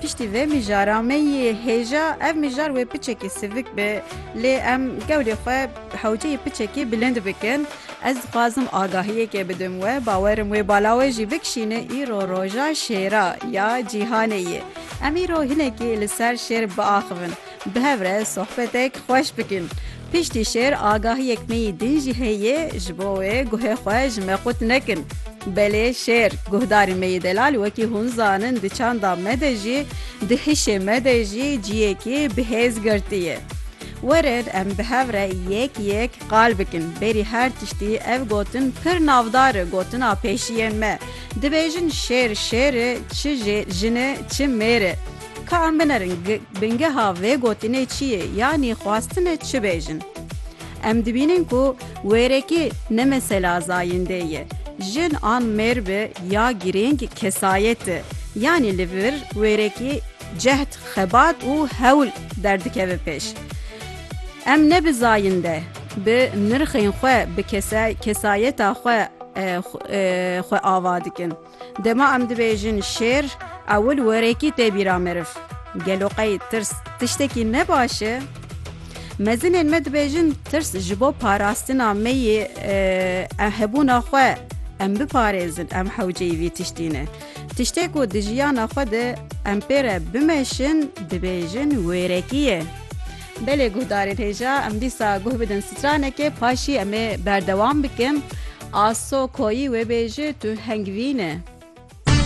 Piştî vê mijara me yê hêja ev mijar wê piçekî sivik be lê em gewlê xwe hewceyê piçekî bilind bikin. Ez dixwazim agahiyekê bidim we, bawerim wê bala we jî bikişîne îro roja şêra ya cîhanê ye. Em îro hinekî li ser şêr biaxivin. Bi hev re sohbetek xweş bikin. Piştî şêr agahiyek me yî din jî heye ji bo wê guhê xwe ji me qut nekin. Belê şêr, guhdarên me yê delal wekî hûn zanin di çanda me de jî, di hişê me de jî ciyekî bi hêz girtiye. Werin em bi hev re yek yek qal bikin. Bêrî her tiştî ev gotin pir navdar e gotina pêşiyên me. Dibêjin şêr şêr e çi jê jin e çi mêr e. Ka em binerin bingeha vê gotinê çi yê yanî xwastine çi bêjin. Em dibînin ku wêrekî ne mesela zayîndê ye, jin an mêr be ya girîng kesayet e, yanî li vir wêrekî cehd, xebat û hewl derdikeve pêş. Em ne bi zayînde, bi nirxên xwe, bi kesayeta xwe xwe ava dikin. Dema em dibêjin şêr, ewil wêrekî tê bîra meriv. Gelo qey tirs tiştekî ne baş e? Mezinên me dibêjin tirs ji bo parastina me yê hebûna xwe em biparêzin em hewceyî vî tiştî ne. Tiştê ku di jiyana xwe de em pê re bimeşin dibêjin wêrekî ye. Belê guhdarên hêja em dîsa guh bidin stranekê paşî em ê berdewam bikin. Aso koyî wê bêje tu hengvîne.